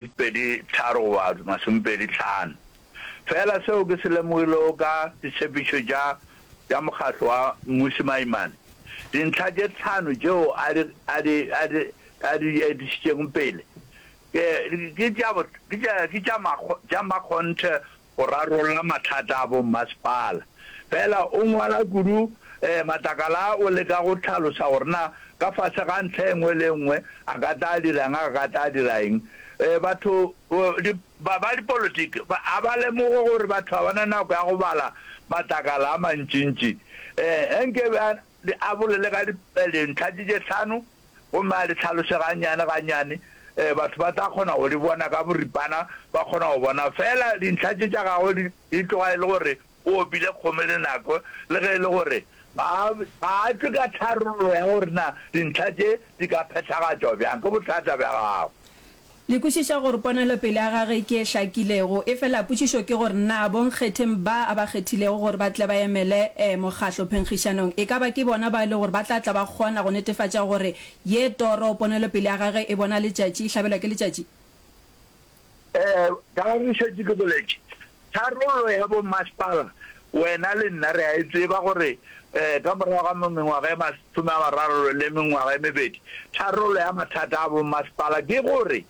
Pedi tharo goba masomepedi tlhano. Feela seo ke se lemogilego ka ditshepetšo tša tša mokgatlo wa Mmusi Maimane, dintlha tše tlhano tšeo a di a di a di a di etišitšeng pele ke ke tša ke tša ke tša tša makgonthe go rarolla mathata a bommasepala. Fela o ngwala kudu um matlakala a o leka go tlhalosa gore na ka fase ga ntlha e nngwe le e nngwe a ka tla a dira eng, a ka tla a dira eng. Um batho ba ba dipolotiki ba a ba lemoge gore batho ga ba na nako ya go bala matlakala a mantšintši um ge nke ba Le a bolele ka dintlha tše tše hlano gomme a le tlhalose gannyane gannyane. Batho ba tla kgona go di bona ka boripana, ba kgona go bona feela dintlha tše tša gagwe di tloga e le gore o opile kgomo le nako, le ge e le gore ga a tšwe ka tharollo ya gore na dintlha tše di ka phethagatšwa bjang ke bothata bja gago. Le kwešiša gore ponelopele ya gagwe ke e hlakilego, efela potšišo ke gore na bonkgetheng ba a ba kgethilego gore ba tle ba emele Mokgatlo phenkgišanong e ka ba ke bona bao e lego gore ba tla tla ba kgona go netefatša gore ye toro ponelopele ya gagwe e bona letšatši, e hlabelwa ke letšatši? Ee, ka ge re šetše ke boletše, Tharollo ya bommasepala wena le nna re a e tseba gore ka morago ga mengwaga e masome a mararo le mengwaga e mebedi, tharollo ya mathata a bommasepala ke gore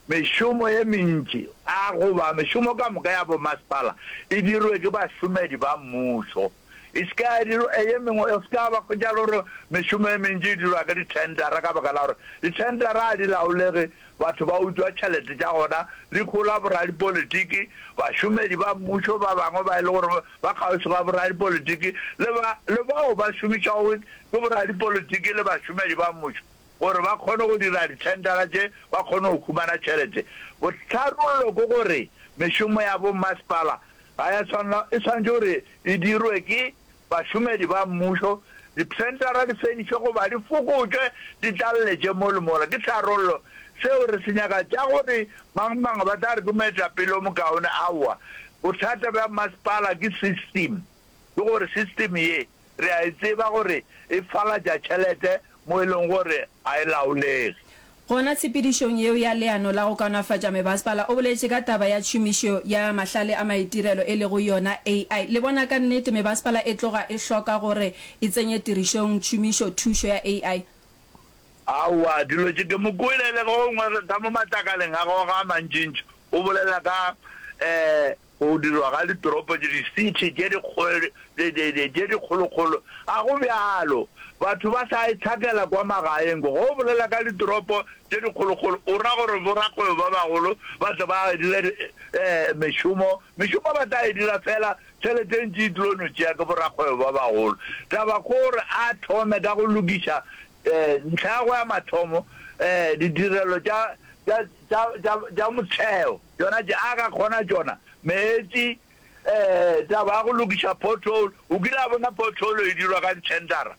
mešomo ye mentši a goba mešomo ka moka ya bommasepala e dirwe ke bašomedi ba mmušo. E se ka ya dirwa e ye mengwe. Go se ka ba hwetšagala gore mešomo e mentši e dirwa ka dithendara ka baka la gore dithendara ga di laolege, batho ba utswa tšhelete tša gona, di hlola boradipolitiki, bašomedi ba mmušo ba bangwe ba e le gore ba kgauswi ga boradipolitiki le ba le bao ba šomišwago ke boradipolitiki le bašomedi ba mmušo gore ba kgone go dira dithendara tše ba kgone go humana tšhelete. Botharollo ke gore mešomo ya bommasepala ga ya tshwanela, e swanetše gore e dirwe ke bašomedi ba mmušo, dipsentara di fedišwe goba di fokotšwe di tlalletše mo le mola. Ke tharollo seo re se nyaka? Tša gore mang-mang ba tla re ke moetapele o mokaone? Aowa. Bothata bja mmasepala ke system, ke gore system ye. re a e tseba gore e falatša tšhelete mo e lego gore ga e laolege. Gona tshepedišong yeo ya leano la go kaonafatša mebasepala o boletše ka taba ya tšhomišo ya mahlale a maitirelo e lego yona AI. Le bona ka nnete mebasepala e tloga e hloka gore e tsenye tirišong tšhomišo thušo ya AI? Aowa, dilo tše ke mo kwele le ge gongwe re tla mo matlakaleng a gago a mantšintši o bolela ka Go dirwa ga ditoropo tše, di-city, tše dikgolokgolo, ga go bjalo. Batho ba sa itshakela kwa magaeng kwa. Ge o bolela ka ditoropo tše dikgolokgolo, o ra gore borakgwebo ba bagolo ba tle ba dire mešomo. Mešomo ba tla e dira feela tšhelete e ntši e tlilo no tšea ke borakgwebo ba bagolo. Taba ke gore a thome ka go lokiša ntlha ya go ya mathomo ditirelo tša motheo. Tšona tše a ka kgona tšona. Meetši, ee, taba ya go lokiša pothole. O kile a bona pothole e dirwa ka ditšhentara?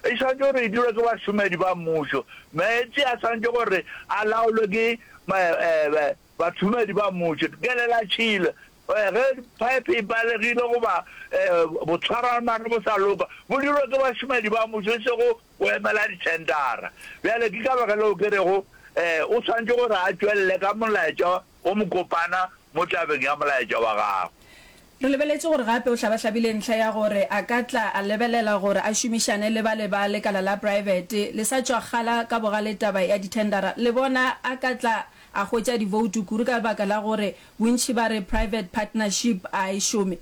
E swanetše gore e dirwe ke bašomedi ba mmušo. Meetši a swanetše gore a laolwe ke bašomedi ba mmušo. Kelela tšhila. Ge phaephe e palegile goba botshwarwana ge bo sa loka, bo dirwe ke bašomedi ba mmušo e sego o emela dithendara. Bjale ke ka baka leo ke rego o swanetše gore a tšwelele ka molaetša o mokopana mo tabeng ya molaetša wa gagwe. Re lebeletše gore gape o hlabahlabile ntlha ya gore a ka tla a lebelela gore a šomišane le bale ba lekala la praebete le sa tšwa kgala ka bogale taba ya dithendara. Le bona a ka tla a hwetša diboutu kuru ka baka la gore bontši ba re private partnership a e šome.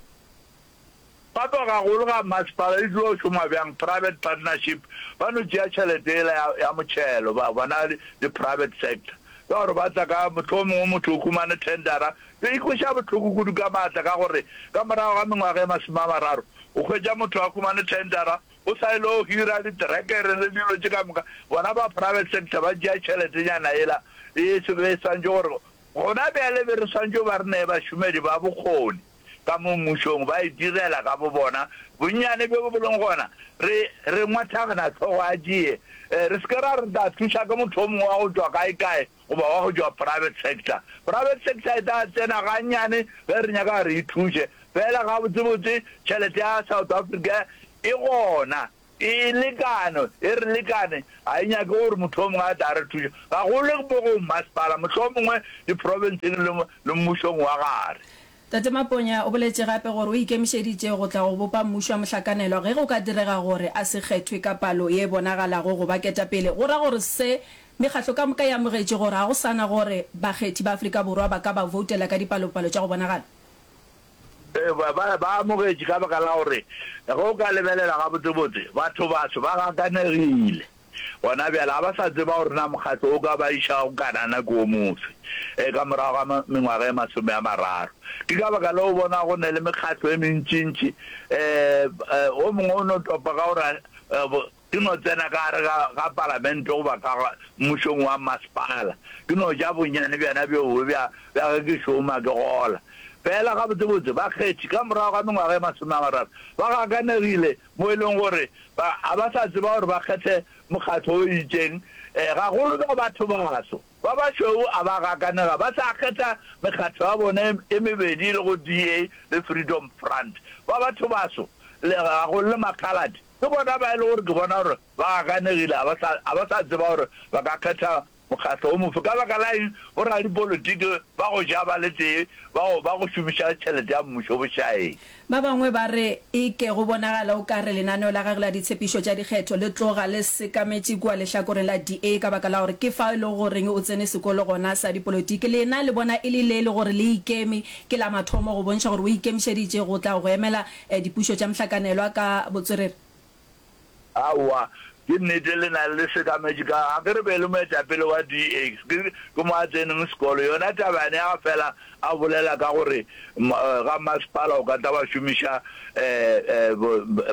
Papagagolo ga masepala e tlo šoma bjang? Private partnership, ba no tšea tšhelete yela ya, ya motšhelo, ba bona le, le private sector. Ka gore ba tla ka, mohlomongwe motho o humane tendera, tlo ikweša bohloko kudu ka maatla, ka gore ka morago ga mengwaga e masome a mararo, o hwetša motho a humane tendera, o sa ilo hira diterekere le dilo tše ka moka. Bona ba private sector ba tšea tšheletenyana yela e, e swantšwe gore gona bjale be re swantšwe ba re nee bašomedi ba bokgoni. ka mo Mmušong ba itirela ka bobona bonnyane bjo bo lego gona. Re, re ngwathagana hlogo a tšee. E, re se ke ra re re tla thuša ke motho o mongwe wa go tšwa kae-kae goba wa go tšwa private sector. Private sector e tla tsena gannyane ge re nyaka re e thuše. Feela gabotsebotse tšhelete ya South Africa e gona. Ee, lekano e re lekane. Ga e nyake gore motho yo mongwe a tla re thuša, gagolo mo go mmasepala, mohlomongwe diprofenseng le, le mmušong wa gare. Tate Maponya o boletše gape gore o ikemišeditše go tla go bopa mmušo wa mohlakanelwa ge go ka direga gore a se kgethwe ka palo ye bonagalago go ba ketapele, go ra gore se mekgatlo ka moka e amogetše gore ga go sa na gore bakgethi ba Afrika Borwa ba ka ba voutela ka dipalopalo tša go bonagala. Ba ba ba amogetše ka baka la gore ge o ka lebelela gabotsebotse, bathobaso ba gakanegile gona bjale. Ga ba sa tseba gore na mokgatlo o ka ba iša go Kanana ke o mofe e ka morago ga mengwaga e masome a mararo. Ke ka baka leo o bona go ne le mekgatlo e mentšintši. Um o mongwe o no topa ka gore Ke no tsena ka gare ga, ga palamente goba ka ga mmušong wa masepala. Ke no ja bonnyane bjana bjoo bja, bja ge ke šoma, ke gola. Fela gabotsebotse, bakgethi, ka morago ga mengwaga e masome a mararo, ba gakanegile, mo e lego gore ba, ga ba sa tseba gore ba kgethe mokgatlo o itšeng. E, gagolo ba bathobaso. Ba bašweu a ba gakanega, ba sa kgetha mekgatlo ya bona e, e mebedi e lego DA le Freedom Front. Ba bathobaso, le, gagolo le Makgaladi. Ke bona ba e le gore ke bona gore ba ganegile, ga ba sa, ga ba sa tseba gore ba ka kgetha mokgatlo wo mofe. Ka baka la eng? Bo-radipolitiki ba go ja ba le tee, ba go, ba go šomiša tšhelete ya mmušo bošaeng. Ba bangwe ba re, E ke go bonagala o ka re lenaneo la gagwe la ditshepišo tša dikgetho le tloga le sekametše kua lehlakoreng la DA ka baka la gore ke fao e lego goreng o tsene sekolo gona sa dipolotiki. Lena le bona e le le e le gore le ikeme, ke la mathomo go bontšha gore o ikemišeditše go tla go emela E, dipušo tša mohlakanelwa ka botswerere. Aowa, ke nnete le na le sekametše ka ga ke re be e le moetapele wa DA, ke ke mo a tseneng sekolo. Yona taba yane ya ga fela a bolela ka gore ga masepala o ka tla wa šomiša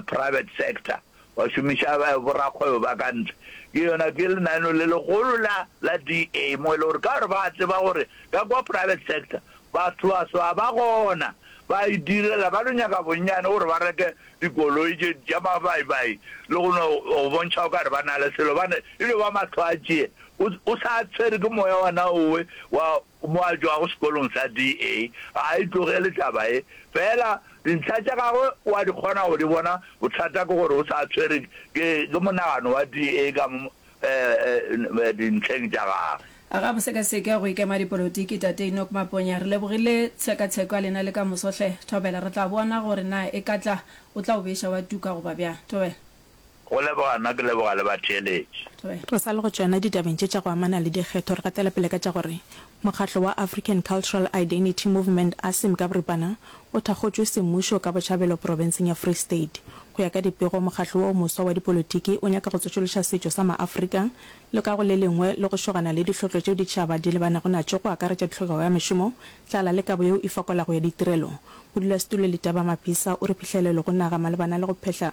private sector. ba šomiša borakgwebo ba ka ntle. Ke yona ke lenaneo le legolo la la DA mo e le gore ka gore ba tseba gore ka kwa private sector baswaswa ba gona ba idirela ba lo nyaka bonnyane gore ba reke dikoloi tše tša mabaibai le go no go bontšha o ka re ba na le selo bane e lo ba matlho a tšee o sa tshwere ke moya wa naowe wa Mo a tšwago sekolong sa DA, ga a e tlogele taba ye. Feela dintlha tša gagwe o a di kgona go di bona, bothata ke gore o sa tshwere ke monagano wa DA ka mo dintlheng tša gagwe. A ga bo sekaseke go ikema dipolotiki, Tate Enoch Maponya. Re lebogile tshekatsheko ya lena le ka moso hle. Thobela, re tla bona gore na e ka tla o tla o beša wa tuka goba bjang. Thobela. Go leboga nna ke leboga le batheeletši. Re sa le go tšeana ditabeng tše tša go amana le dikgetho, re gatela pele ka tša gore mokgatlo wa African Cultural Identity Movement, ACIM ka boripana, o thakgotšwe semmušo ka botšhabelo profenseng ya Free State. Go ya ka dipego, mokgatlo wo o moswa wa dipolotiki o nyaka go tsošološa setšo sa Maafrika le ka go le lengwe le go šogana le dihlotlo tšeo ditšhaba di lebanego natšo go akaretša tlhokego ya mešomo, tlala le kabo yeo e fokolago ya ditirelo. Modulasetulo Letaba Mapisa o re phihlelelo go naga malebana le go phehla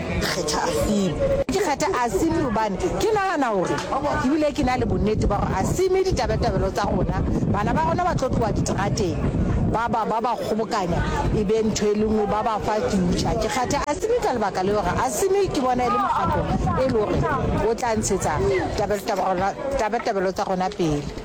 kgetha Asimi. Ke kgetha Asimi gobane ke nagana gore ebile ke na le bonnete ba gore Asimi ditabetabelo tsa gona, bana ba gona ba tlo tloga diterateng ba ba ba ba kgobokanya e be ntho e le nngwe ba ba fa future. Ke kgetha Asimi ka lebaka le gore Asimi ke bona e le mokgatlo e le gore o tla ntshetsa tabetabelo tsa gona pele.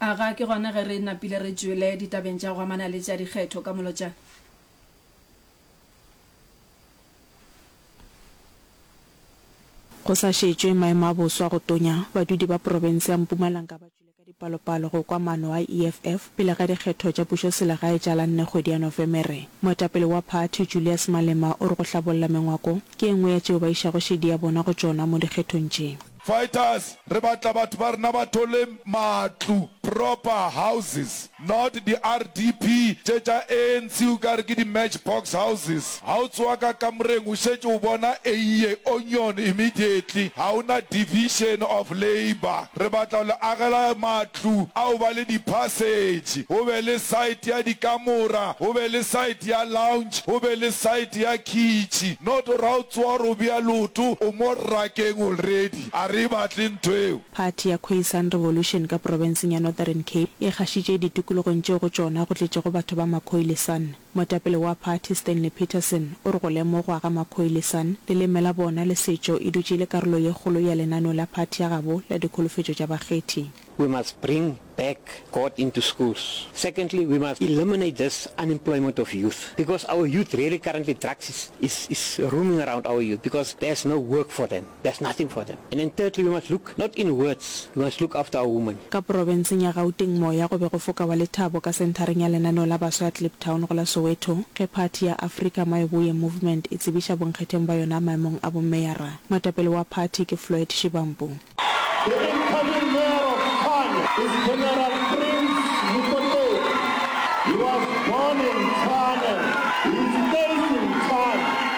A ga ke gona ge re napile re tšwele ditabeng tša go amana le tša dikgetho ka molotšana? Go sa šetšwe maemo a boswa go tonya, badudi ba profense ya Mpumalanka ba tšwile ka dipalopalo go kwa maano a EFF pele ga dikgetho tša pušoselegae tša la nne kgwedi ya Nofemere. Moetapele wa phathi, Julius Malema, o re go hlabolla mengwako ke e nngwe ya tšeo ba išago šedi ya bona go tšona mo dikgethong tše. Fighters re batla batho ba rena ba thole matlu, proper houses, not di RDP tše tša ANC u ka re ke di match box houses. Ha o tsoa ka kamoreng o šetše o bona eiye onion immediately, ha o na division of labour. Re batla ho le agela matlu. matlu a go ba le diphasetšhe, go be le saete ya dikamora, go be le saete ya lounge, go be le saete ya khitšhi. Noto ra o tsowa gore o bea leoto o mo rakeng already. A re e batle ntho eo. Party ya Khoisan Revolution ka profenseng ya Northern Cape e gašitše ditokologong tšeo go tšona go tletšego batho ba Makhoi le San. Moetapele wa phathi Stanley Peterson o re go lemogwa ga Makhoilesan, leleme la bona le setšo e dutše e le karolo ye kgolo ya lenaneo la phathi ya gabo la dikholofetšo tša bakgethi. We must bring back God into schools. Secondly, we must eliminate this unemployment of youth because our youth really currently drugs is is is rooming around our youth because there's no work for them. there's nothing for them and then thirdly we must look not in words we must look after our women. Ka porobenseng ya Gauteng moya go be go foka wa lethabo ka senthareng ya lenaneo la baswa ya Kliptown go la Soweto ge phathi ya Afrika Mayoboye Movement e tsebiša bonkgetheng ba yona maemong a bomeyara. Moetapele wa phathi ke Floyd Shivambu. The incoming mayor of Tshwane is General Prince Mokotedi. He was born in Tshwane, he stays in Tshwane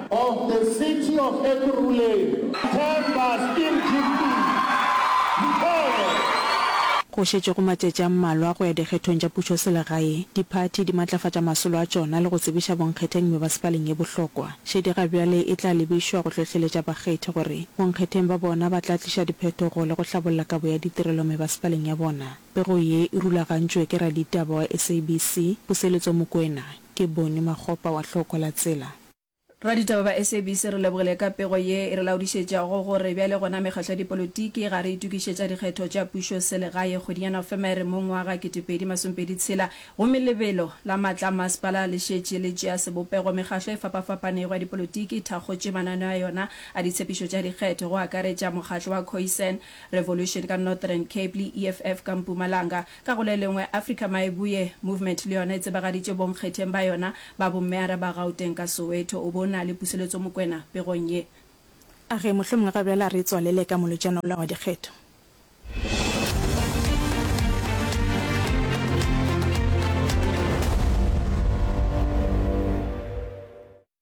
of the city of Ekurhuleni, Themba Skeem Jimpi Mkhwele. Go šetše go matšatši a mmalwa go ya dikgethong tša pušoselegae, diphathi di matlafatša masolo a tšona le go tsebiša bonkgetheng mebasepaleng ye bohlokwa. Šedi ga bjale e tla lebišwa go hlohleletša bakgethi gore bonkgetheng ba bona ba tla tliša diphetogo le go hlabolla kabo ya ditirelo mebasepaleng ya bona. Pego ye e rulagantšwe ke raditaba wa SABC, Puseletso Mokoena. Ke Bonnie Makgopa wa Hlooko la Tsela. Raditaba ba SABC re lebogile ka pego ye e re laodišetšago gore bjale gona mekgatlo ya dipolotiki ga re itokišetša dikgetho tša pušo selegae kgweding ya Nofemere mo ngwa ga 2026 gomme lebelo la matla a masepala le šetše le tšea sebopego mekgatlo e fapafapanego ya dipolotiki thakgotše mananeo a yona a ditshepišo tša dikgetho go akaretša mokgatlo wa Khoisan Revolution ka Northern Cape le EFF ka Mpumalanga Ka go le lengwe, Afrika Maeboe Movement le yona e tsebagaditše bonkgetheng ba yona ba bommeara ba Gauteng ka Soweto. O be o na le puseletso Mokwena pegong ye. A ge mohlomongwe ga bjale a re tswalele ka molotšana wola wa dikgetho.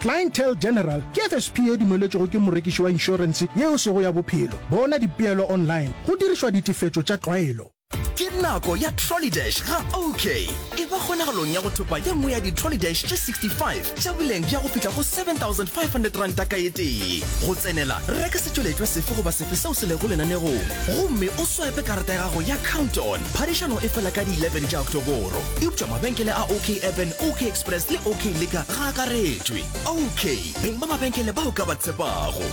Clientele General ke FSP e dumeletšwego ke morekiši wa inšorense yeo e sego ya bophelo. Bona dipeelo online go dirišwa ditefetšo tša tlwaelo. Ke nako ya Trollydash ga OK! E ba kgonagalong ya go thopa ye nngwe ya di-Trollydash tše 65 tša boleng bja go fihla go R7,500 ka e tee. Go tsenela, reka setšweletšwa sefe goba sefe seo se lego lenanegong gomme o swaepe karata ya gago ya Count-On. Phadišano e fela ka di 11 tša Oktoboro. Eupša mabenkele a OK Urban, OK Express le OK Liquor Ga akaretšwe. OK, beng ba mabenkele ba o ka ba tshepago.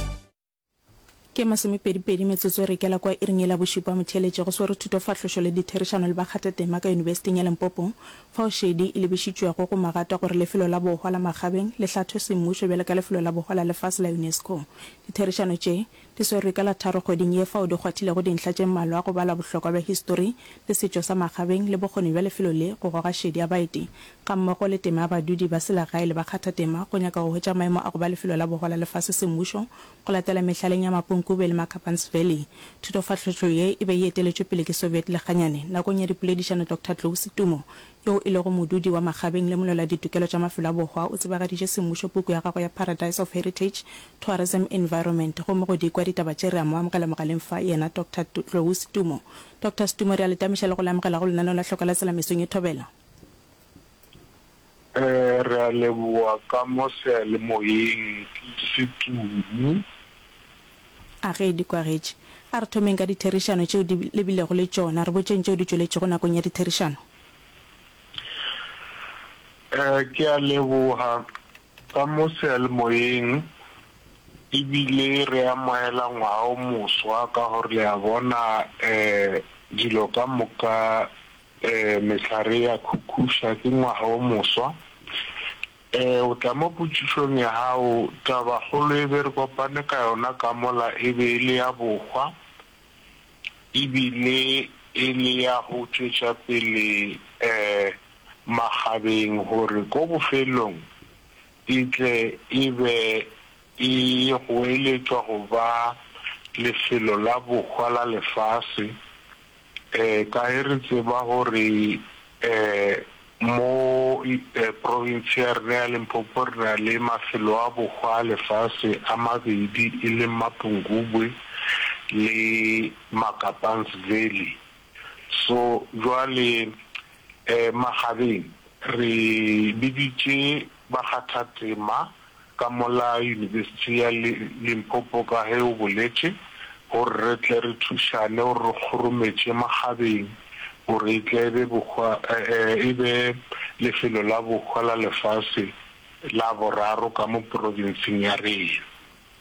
Ke masomepedipedi metsotso e re ikela kwa iring yela bošupa motheeletše. Go swere thuto, fahlošo le ditherišano le bakgathatema ka Yunibesiting ya Limpopo, fao šedi e lebišitšwego go magata gore lefelo la bohwa la Magabeng le hlathwe semmušo bjalo ka lefelo la bohwa la lefase la UNESCO. Ditherišano tše, Di swerwe ka la tharo kgweding ye fao di kgwathilego dintlha tše mmalwa go bala bohlokwa bja histori le setšo sa Magabeng le bokgoni bja lefelo le go goga šedi ya baeti gammogo le tema ya badudi ba selegae le bakgathatema go nyaka go hwetša maemo a go ba lefelo la bogola lefase semmušo go latela mehlaleng ya Mapunkube le Makapan's Valley. Thutofahlotšo ye e be e eteletšwe pele ke Soviet Leganyane. Nakong ya dipoledišano Doctor Tlou Setumo yo e lego modudi wa Magabeng le molwela-ditokelo tša mafelo a bohwa, o tsebagaditše semmušo puku ya gagwe ya Paradise of Heritage, Tourism Environment. Gomme go di kwa ditaba tše, re a mo amogela mogaleng fa, yena Doctor Tlou Stumo. Doctor Stumo, re a le tamiša le go le amogela go lenaneo la Hloka la Tsela mesong ye thobela. Re a leboa ka mo seyalemoyeng, Stumo. A ge di kwagetše, a re thomeng ka ditherišano tšeo di lebilego le tšona. Re botšeng tšeo di tšweletšego nakong ya ditherišano. E, ke a leboga. Ka mo sealemoyeng, e bile re amogela ngwaga o moswa, ka gore le a bona, e, dilo ka moka, e, mehlare e a khukhuša, ke ngwaga o moswa. Ee, o tla mo potšišong ya gago. Tabakgolo e be re kopane ka yona ka mola e be e le ya bohwa e bile e le ya go tšwetša pele makgabeng gore ko bofelelong e tle e be e goeletšwa go ba lefelo la bohwa la lefase. Kae re tseba gore mo province ya rena ya Limpopo re na le mafelo a bohwa a lefase a mabedi e leng Mapungubwe le Makapan's Valley. So jwale makgabeng re biditše bakgathatema. ka mola Yunibesithi ya Limpopo ka ge o boletše, gore re tle re thušane gore re kgorometše makgabeng gore e tle e be bohwa, e be lefelo la bohwa la lefase la boraro ka mo provinseng ya rena.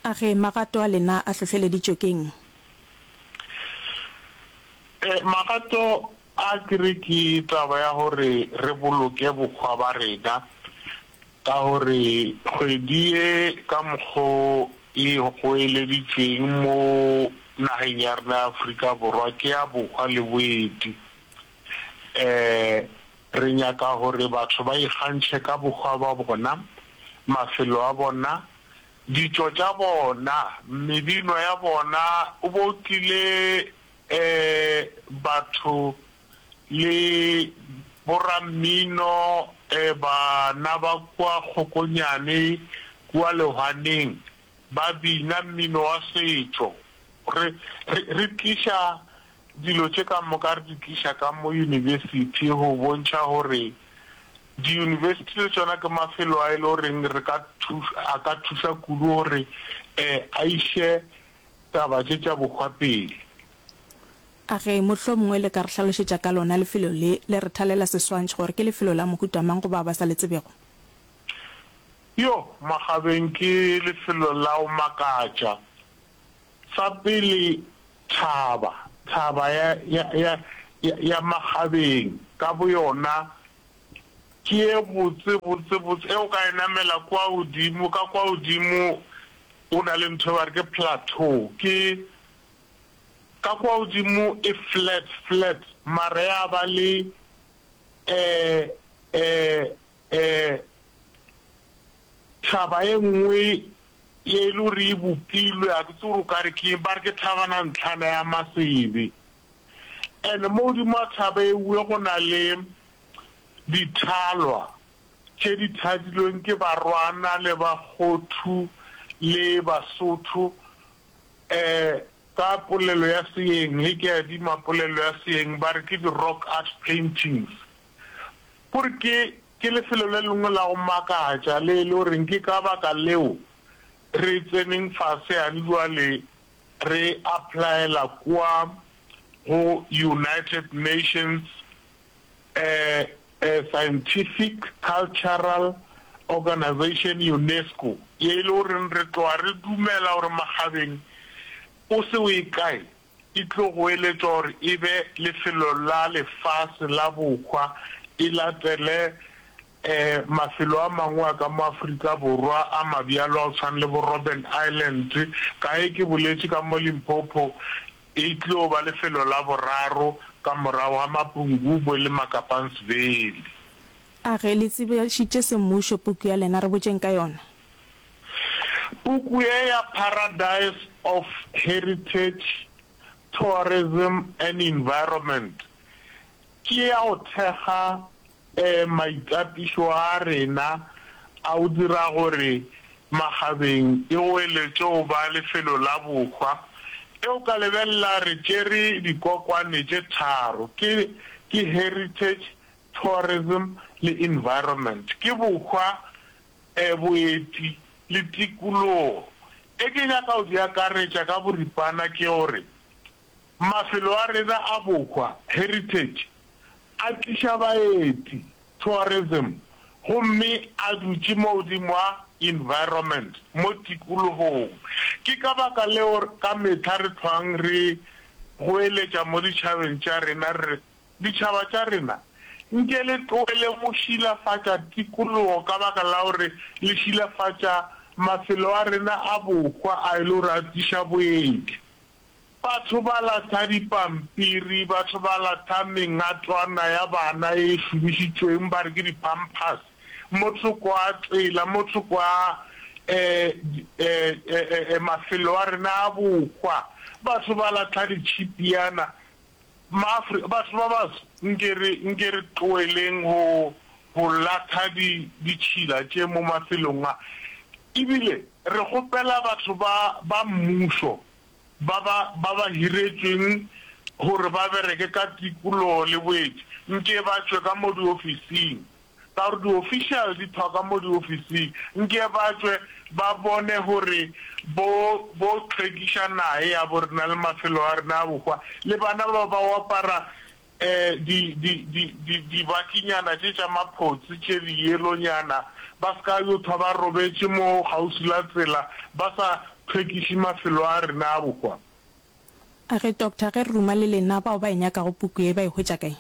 A re magato a lena a hlohleleditšwe ke'ng? E, magato a ke re ke taba ya gore re boloke bohwa ba rena. Ka gore kgwedi ye ka mokgo e goeleditšweng mo nageng ya rena ya Afrika Borwa ke ya bohwa le boeti. Re nyaka gore batho ba ikgantšhe ka bohwa ba bona, mafelo a bona, ditšo tša bona, mebino ya bona. O bo tlile batho le borammino ba na ba kua kgokonyane kua lehwaneng ba bina mmino wa setšo. Re, re, re tliša dilo tše ka moka, re di tliša ka mo yunibesithi go bontšha gore diyunibesithi le tšona ke mafelo a e le goreng re ka thuša, a ka thuša kudu gore a iše taba tše tša bohwa pele. A ge mohlomongwe le ka re hlalošetša ka lona lefelo le, le re thalela seswantšho gore ke lefelo la mohuta mang go bao ba sa le tsebego? Yo, makgabeng ke lefelo la go makatša. Sa pele, thaba, thaba ya, ya, ya, ya, ya makgabeng ka boyona ke ye botse, botse, botse, ge o ka e namela kua godimo, ka kua godimo go na le ntho e ba re ke plateau, ke, Ka kwa godimo e flat, flat, mara ya ba le eh, eh, eh, thaba e nngwe ye e le gore e bopilwe, ga ke tse gore o ka re ke eng, ba re ke thabana ntlhana ya masebe. And mo godimo ga thaba ewe go na le dithalwa tše di thadilweng ke Barwana le Bakgothu le Basotho Ee, ka polelo ya seeng, le ke a dima polelo ya seeng, ba re ke di-rock art paintings. Kore ke, ke lefelo le lengwe la go makatša le e le goreng ke ka baka leo re tseneng fase yane bjale re applyela kua go United Nations A scientific cultural organization Unesco ye e le goreng re tloga re dumela gore makgabeng o se o e kae e tlo goeletšwa gore e be lefelo la lefase la bohwa e latele mafelo a mangwe a ka mo Afrika Borwa a mabjalo a go tshwana le bo Robben Island ka ge ke boletše ka mo Limpopo E tlo ba lefelo la boraro ka morago ga Mapungubwe le Makapansville. A ge le tsebašitše semmušo puku ya lena? Re botšeng ka yona. Puku ye ya Paradise of Heritage, Tourism and Environment ke ya go thekga Ee, maitapišo a rena a o dira gore makgabeng e goeletše go ba lefelo la bohwa. E o ka lebelela re tšere dikokwane tše tharo, ke, ke Heritage, Tourism le Environment. Ke bohwa, eh, boeti le tikologo. E ke nyaka go di akaretša ka boripana ke gore Mafelo a rena a bohwa, heritage, a tliša baeti, tourism, gomme a dutše mo godimo a, environment, mo tikologong. Ke ka baka leo ka mehla re hlwang re goeletša mo ditšhabeng tša rena re re, Ditšhaba tša rena, nke le tlohele go šilafatša tikologo ka baka la gore le šilafatša mafelo a rena a bohwa a e le gore a tliša boeti. Batho ba latha dipampiri, batho ba latha mengatwana ya bana e šomišitšweng ba re ke di-pampers, mo thoko a tsela, mo thoko a mafelo a rena a bohwa. Batho ba latha ditšhipiana. Maafrika, batho ba baso, nke re, nke re tloeleng go, go latha di, ditšhila tše mo mafelong a. Ebile. Re kgopela batho ba ba mmušo ba ba ba ba hiretšweng gore ba bereke ka tikologo le boeti nke ba tšwe ka mo diofising, ka gore diofišale di thwa ka mo diofising, nke ba tšwe ba bone gore bo bo tlhwekiša nahe yabo rena le mafelo a rena a bohwa le bana ba ba oapara di, di, di, di, dibakinyana tše tša maphotse tše diyelonyana, ba se ka yo thwa ba robetše mo kgauswi la tsela, ba sa hlwekiše mafelo a rena a bohwa. A re, Doctor, ge re ruma le lena, bao ba e nyakago puku ye ba e hwetša kae?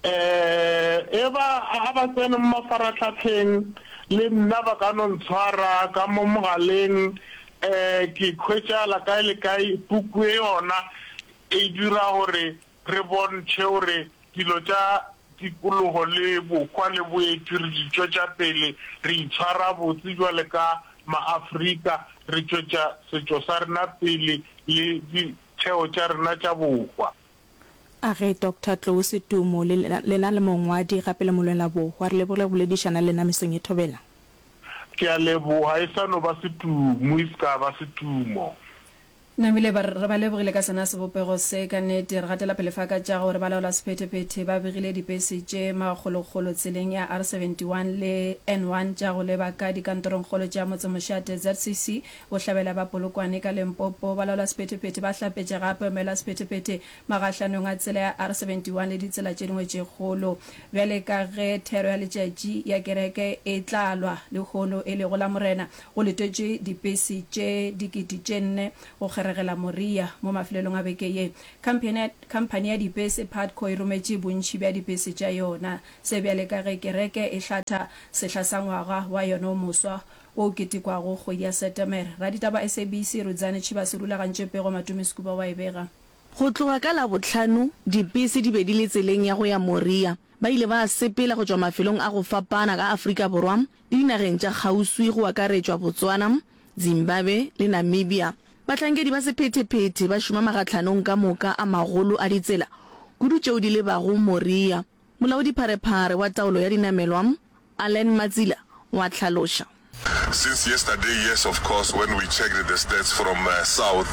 Ee, eba a ba tsene mo mafarahlahleng, le nna ba ka no ntshwara ka mo mogaleng, ke khwetšagala kae le kae, puku ye yona E dira gore re bontšhe gore dilo tša tikologo le bohwa le boeti re di tšwetša pele, re itshwara botse bjale ka Maafrika, re tšwetša setšo sa rena pele le ditheo tša rena tša bohwa. A re, Doctor Tlou Setumo, le lena le mongwadi gape le molwela bohwa, re leboge go boledišana le lena mesong e thobela. Ke a leboga, e sa no ba Setumo, e se ka ba Setumo. Namile ba re, Re ba lebogile ka sona sebopego se. Ka nnete, re gatela pele fa ka tša gore balaolasephetephete ba begile dibese tše makgolokgolo tseleng ya R71 le N1 tša go leba ka dikantorongkgolo tša motsemošate ZCC, bohlabela ba Polokwane ka Limpopo. Balaolasephetephete ba hlapetše gape maelaosephetephete magahlanong a tsela ya R71 le ditsela tše dingwe tše kgolo. Bjale ka ge thero ya letšatši ya kereke e tla lwa lehono e lego la Morena, Go letetšwe dipesi tše dikete tše nne go kgeregela Moriya mo mafelelong a beke ye. Khamphene ya, khamphani ya dipesi Putco e rometše bontši bja dipesi tša yona. Se bjale ka ge kereke e hlatha sehla sa ngwaga wa yona o moswa wo o ketekwago kgwedi ya Setemere. Raditaba SABC Rudzani Chibase o rulagantše pego Matumi Skuba wa e bega. Go tloga ka Labohlano, dipesi di be di le tseleng ya go ya Moriya. Ba ile ba sepela go tšwa mafelong a go fapana ka Afrika Borwa Dinageng tša kgauswi go akaretšwa Botswana, Zimbabwe le Namibia, bahlankedi ba sephetephete ba šoma makgatlhanong ka moka a magolo a ditsela, kudu tšeo di lebago Moria, Molaodipharephare wa Taolo ya Dinamelwa, Allan Matsila o a hlaloša. Since yesterday, yes of course, when we checked the stats from south,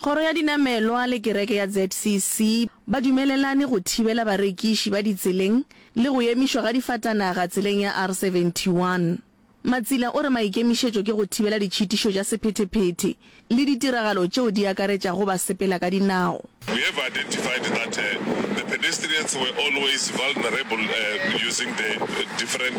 Kgoro ya Dinamelwa le Kereke ya ZCC ba dumelelane go thibela barekiši ba ditseleng le go emišwa ga difatanaga tseleng ya R71. Matsila o re maikemišetšo ke go thibela ditšhitišo tša sephetephete le ditiragalo tšeo di akaretšago basepela ka dinao. We have identified that the pedestrians were always vulnerable using the different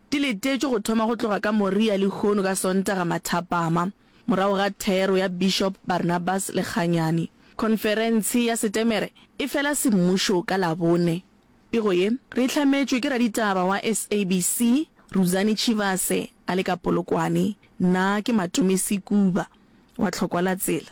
Di letetšwe go thoma go tloga ka Moria lehono ka Sontaga mathapama, morago ga thero ya Bishop Barnabas Lekganyane. Khonferentshe ya Setemere e fela semmušo ka Labone. Pego ye re e hlametšwe ke raditaba wa SABC, Ruzani Chivase a le ka Polokwane. Nna ke Matome Sekuba wa Tlhokwalatsela.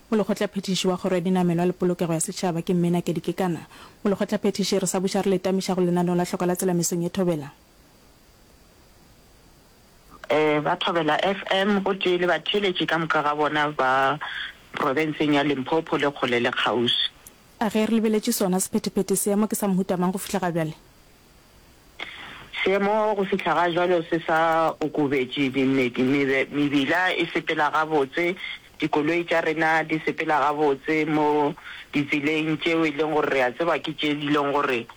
Molekgotlaphethiši wa Kgoro ya Dinamelwa le Polokego ya Setšhaba ke Mme Nakedi Kekana. Molekgotlaphethiši, re sa buša re le tamiša go lenaneo la Hloko la Tsela mesong ye Thobela. Ba Thobela FM gotee le batheeletši ka moka ga bona ba profenseng ya Limpopo le kgole le kgauswi. A ge re lebeletše sona sephetephete se, mo ke sa mohuta mang go fihla ga bjale? Seemo go fihla ga jwalo se sa okobetše, mebila e sepela gabotse, dikoloi tša rena di sepela gabotse mo ditseleng tšeo e leng gore re a tseba ke tše di leng gore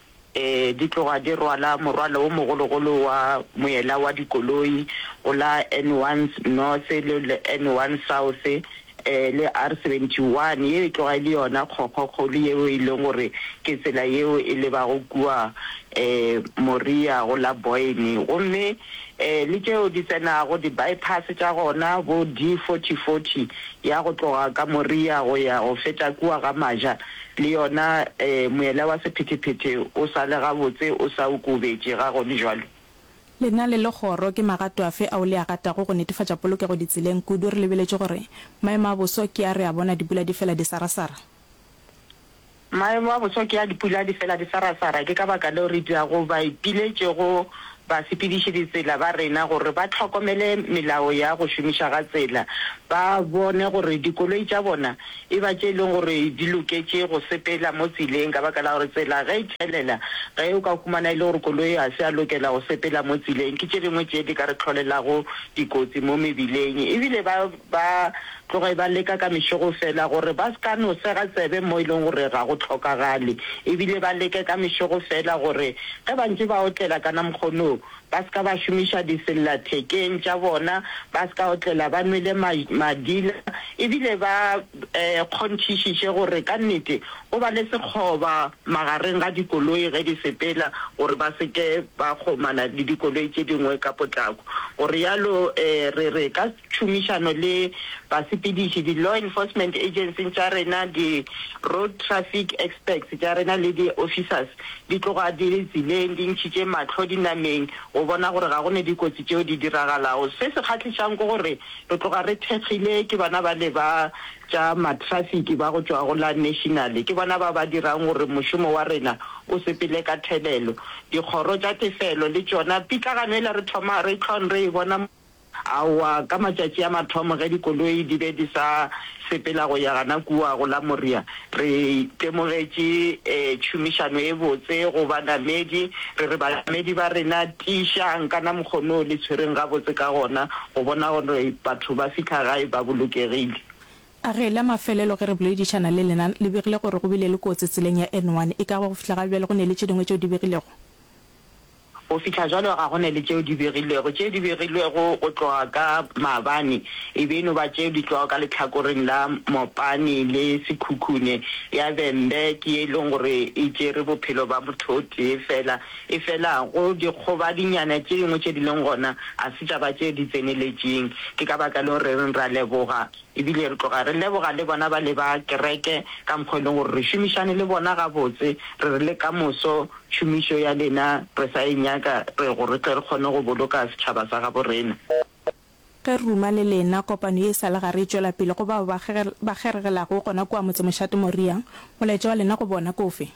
di tloga di rwala morwalo o mogologolo wa moela wa dikoloi go la N1 North le N1 South. ee, le R 71, ye e tloga e le yona kgokgokgolo yeo e lego gore ke tsela yeo e lebago kua ee, Moriya go la Boyne, gomme ee, le tšeo di tsenago di-bypass tša gona, bo D 40, 40 ya go tloga ka Moriya go ya go feta kua ga Maja, le yona ee, moela wa sephethephethe o sa le gabotse o sa okobetše, ga go le bjalo? Lena le Legoro ke magato afe ao le a gatago go netefatša polokego ditseleng kudu re lebeletše gore maemo a boso ke a re a bona dipula di fela di sarasara? Maemo a boso ke a dipula di fela di sarasara ke ka baka leo re dirago baipiletše go basepediši ditsela ba rena gore ba hlokomele melao ya go šomiša ga tsela ba bone gore dikoloi tša bona e ba tše e lego gore di loketše go sepela mo tseleng ka baka la gore tsela ge e thelela, ge o ka humana e le gore koloi ga se ya lokela go sepela mo tseleng, ke tše dingwe tše di ka re tlholelago dikotsi mo mebileng. E bile ba ba tloge ba leka ka mešogo fela gore ba se ka no sega tsebe mo e lego gore ga go hlokagale, e bile ba leke ka mešogo fela gore ge ba ntše ba otlela ka na mokgon'o, ba se ka ba šomiša disellathekeng tša bona, ba se ka otlela ba nwele ma, madila, e bile ba e, kgonthišiše gore ka nnete go ba le sekgoba magareng ga dikoloi ge di sepela gore ba se ke ba kgomana le dikoloi tše dingwe ka potlako, go realo e, re re ka tšhomišano le basepediši, di-law enforcement agencies tša rena, di-road traffic experts tša rena le di-officers di tloga di le tseleng di ntšhitše mahlo dinameng go bona gore ga go ne dikotsi tšeo di diragalago. Se se kgahlišang ke gore re tloga re thekgile ke bona bale ba tša matrafiki ba go tšwa go la National, ke bona ba ba dirang gore mošomo wa rena o sepele ka thelelo. Dikgoro tša tefelo le tšona pitlagano yela re thoma re hlong re e bona. Aowa, ka matšatši a mathomo ge dikoloi di be di sa sepela go ya gana kua go la Moria, re itemogetše tšhomišano e botse go banamedi. Re re banamedi ba rena, Tiišang ka na mokgo no le tshwereng gabotse ka gona go bona gore batho ba fihla gae ba bolokegile. A re, La mafelelo ge re boledišana le lena, le begile gore go bile le kotsi tseleng ya N1, e ka ba go fihla ga bjale go ne le tše dingwe tšeo di begilego? Go fihla jwalo ga go ne le tšeo di begilwego. Tšeo di begilwego go tloga ka maabane e be e no ba tšeo di tšwago ka lehlakoreng la Mopane le Sekhukhune. Ya Bembe ke ye e lego gore e tšere bophelo ba motho o tee fela. Efela go dikgobadinyana tše dingwe tše di lego gona ga se tša ba tše di tseneletšeng. Ke ka baka leo re reng re a leboga. E bile re tloga re leboga le bona ba le ba kereke ka mokgwa o e leng gore re šomišane le bona gabotse. Re re le ka moso tšhomišo ya lena re sa e nyaka re gore re tle re kgone go boloka setšhaba sa gabo rena. Ge re ruma le lena, kopano ye e sa le gare e tšwela pele. Go bao ba kgeregelago gona kua motsemošate Moriah, molaetša wa lena go bona ke ofe?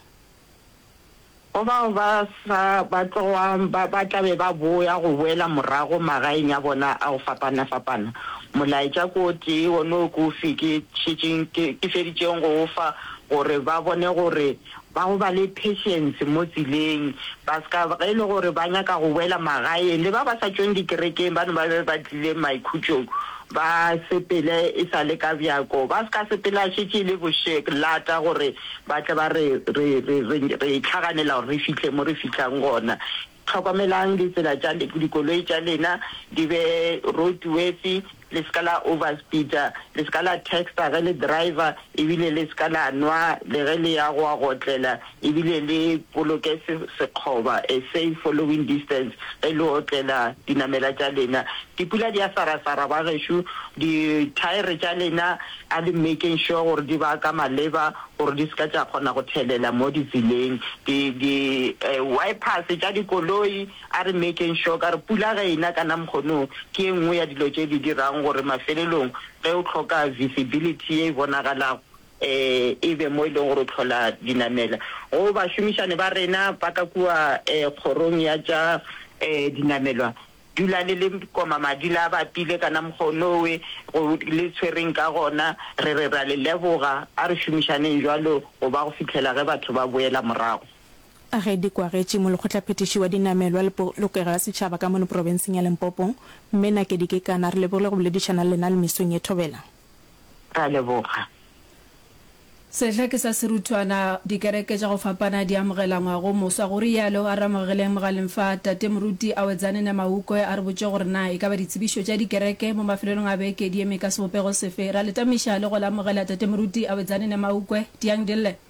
Go bao ba sa ba tlogwang ba ba tla be ba boya go boela morago magaeng a bona a go fapana-fapana, molaetša ke o tee wonoo ke o fe ke šetšeng ke ke feditšeng go o fa, gore ba bone gore ba go ba le patience mo tseleng, ba se ka ge e le gore ba nyaka go boela magaeng. Le ba ba sa tšweng dikerekeng bano ba be ba tlile maikhutšong Ba sepele e sa le ka bjako, ba se ka sepela šetše e le bošek, lata, gore ba tle ba re, re, re, re, re hlaganela gore re fihle mo re fihlang gona. Hlokomelang ditsela tša le, dikoloi tša lena di be roadworthy, le se ka la overspeeder, le se ka la texta ge le driver, ebile le se ka la nwa le ge le ya go a go otlela. e bile le boloke se sekgoba, a safe following distance, ge le otlela dinamela tša lena. Dipula di a sarasara bagešo, dithaere tša lena a le making sure gore di ba ka maleba gore di se ka tša kgona go thelela mo ditseleng. Di, di, uh, wipers tša dikoloi a re making sure ka gore pula ge ena ka namkgono ke e nngwe ya dilo tše di dirang gore mafelelong ge o hloka visibility ye e bonagalago e be mo e lego gore o tlhola dinamela go bašomišane ba rena ba ka kua kgorong ya tša dinamelwa. Dula le le koma madi la bapile kana mokgo nowe go le tshwereng ka gona. Re re ra le leboga. A re šomišaneng jwalo go ba go fihlela ge batho ba boela morago. A ge di kwagetše molekgotlaphethiši wa dinamelwa le polokego ya setšhaba ka mono profenseng ya Limpopo, Mme Nakedi Kekana, re lebogile go boledišana le lena le mesong ye thobela. Re a leboga. Sehla ke sa seruthwana. Dikereke tša go fapana di amogela ngwago moswa, go rialo Aramogeleng Mogaleng fa Tate Moruti a wetsane ne Maukwe a re botše gore na e ka ba ditsebišo tša dikereke mo mafelelong a beke di eme ka sebopego sefe. Ra letamiša le go le amogela Tate Moruti a wetsane ne Maukwe. Tiang Dille.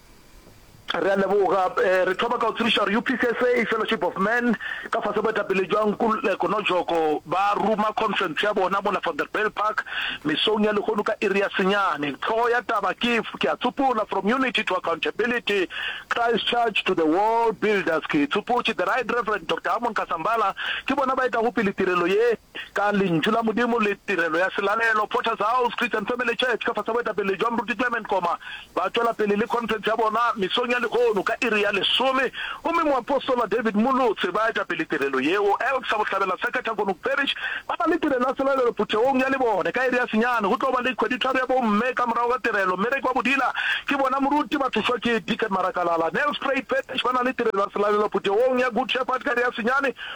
Re a leboga. Re thoma ka go tsebiša gore UPCSA, Fellowship of Man, ka fase boetapele bja Nkululeko Nojoko ba ruma khonferense ya bona mola Vanderbijl Park mesong ya lehono ka iri ya senyane. Hlogo ya taba ke Ke a Tsopola, From Unity to Accountability, Christchurch to the World Builders. Ke tsopotše The Right Reverend Doctor Hammond Kasambala, ke bona ba etago pele tirelo ye. Ka Lentšu la Modimo le Tirelo ya Selalelo, Potter's House Christian Family Church ka fase ga boetapele bja Moruti Clement Koma ba tšwela pele le khonferense ya bona mesong ya lehono ka iri ya lesome, gomme moapostola David Molotse ba eta pele tirelo yeo. Elk sa Bohlabela sa Kathakgonook Parish ba na le tirelo ya selalelo phuthegong ya lebone ka iri ya senyane. Go tlo ba le kgweditharo ya bomme ka morago ga tirelo. Mmereko wa bodila ke bona moruti ba thušwa ke Deacon Marakalala. Nelspruit Parish ba na le tirelo ya selalelo phuthegong ya Good Shepherd ka iri ya senyane.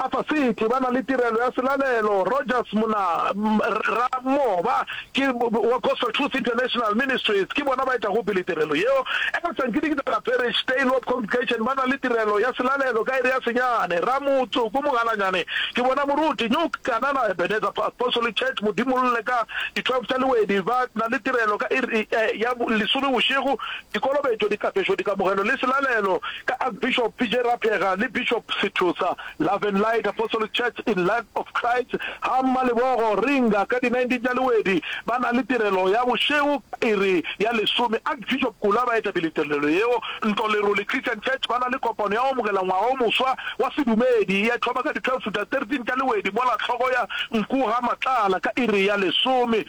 Upper City ba na le tirelo ya selalelo, Rogers Mona, Rra Mo ba ke wa Gospel Truth International Ministries, ke bona ba etago pele tirelo yeo. Eka Sankinikitana Parish, Tailwarp Congregation ba na le tirelo ya selalelo ka iri ya senyane, Rra Motsoko Mogalanyane ke bona moruti, New Kanana Ebenezer Apostolic Church Modimolle ka di 12 tša lewedi ba na le tirelo ka iri ya lesome bošego, Dikolobetšo, dikapeso, dikamogelo le selalelo ka Archbishop PJ Rapheega le Bishop Sethosa, Love and Light Apostolic Church in Life of Christ ga Mmalebogo, Ringa, ka di 19 tša Lwedi ba na le tirelo ya bošego ka iri ya lesome. Archbishop Kula ba etapele tirelelo yeo. Ntlo Lerole Christian Church ba na le kopano ya go amogela ngwaga o moswa wa sedumedi ya thoma ka di 12 tša 13 tša Lwedi mola hloko ya nku ga Matlala ka iri ya lesome.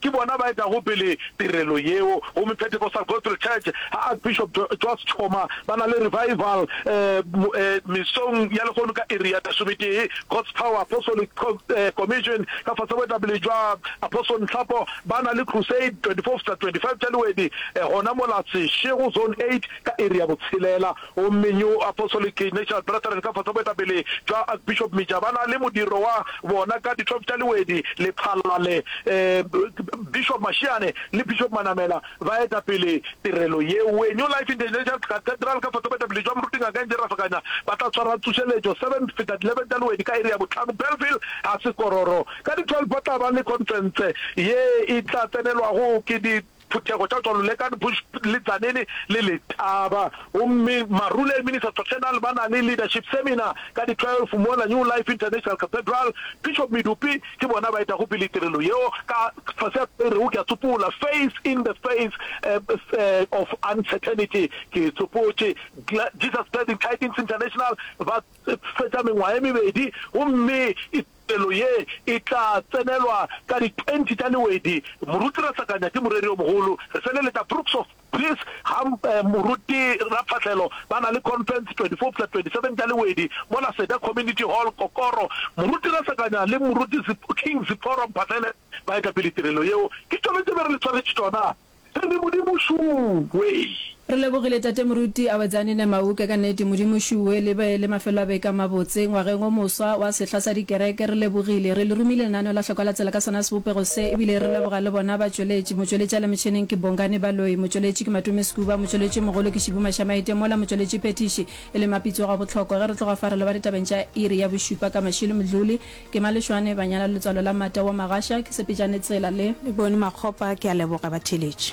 ke bona ba etago pele tirelo yeo. Gomme Pentecostal Gospel Church, ga Archbishop Joss Tshoma, ba na le Revival mesong ya lehono ka iri ya lesometee, God's Power Apostolic Commission ka fase go etapele jwa Apostle Nhlapo, ba na le Crusade 24 Fta 25 Tša Lewedi gona mola Seshego Zone 8 ka iri ya botshelela. Gomme New Apostolic Ignatius Brethren ka fase ga boetapele bja Archbishop Mija ba na le modiro wa bona ka Ditlhoph tša Lewedi, Lephalale. Bishop Mashiane le Bishop Manamela ba eta pele tirelo yewe. New Life International Cathedral ka fase ga boetapele bja Moruti Ngaka Angie Rafakanya ba tla swara tsošeletšo 7 feta 11 tša Lewedi ka iri ya bohlano Bellville ga Sekororo. Ka di 12 ba tla ba le khonferense ye e tla tsenelwago ke di Phuthego tša tšwa Lulekani Bush, le Tzaneen le Letaba. Gomme Marula e Ministers Doctrinal ba na le Leadership Seminar ka di 12 mola New Life International Cathedral. Bishop Medupi ke bona ba etago pele tirelo yeo ka fase ya se e rego, ke a tsopola, Faith in the Face of Uncertainty. Ke tsopotše Jesus Glad Tidings International ba fetša mengwaga e mebedi gomme Pelo ye e tla tsenelwa ka di 20 tša lewedi. Moruti Rasakanya ke moreri yo mogolo. Re feleletša Brooks of Peace ga moruti Raphahlelo ba na le conference 24 fla 27 tša lewedi mola Seda Community Hall, Kokoro. Moruti Rasakanya le moruti King Ziphoro Mphahlele ba etapele tirelo yeo. Ke tšone tše be re le tshwaretše tšona. Re ne Modimo šuwe. Re lebogile Tate Moruti Awetsanine Mauke, ka nnete Modimo šuwe le be le mafelo a beke a mabotse ngwageng o moswa wa sehla sa dikereke. Re lebogile. Re le romile lenaneo la Hlokwa la Tsela ka sona sebopego se, ebile re leboga le bona batšweletši. Motšweletši a le motšheneng ke Bongani Baloyi, motšweletši ke Matumi Skuba, motšweletši mogolo ke Shibu Mashamaite, mola motšweletšiphethiši e le Mapitso Gabohloko. Ge re tloga fa re leba ditabeng tša iri ya bošupa ka mašilo, Mdluli, Ke Malešwane ba nyala letswalo la Mata wa Magasha ke Sepejane Tsela le. Bone Makgopa ke a leboga batheeletši.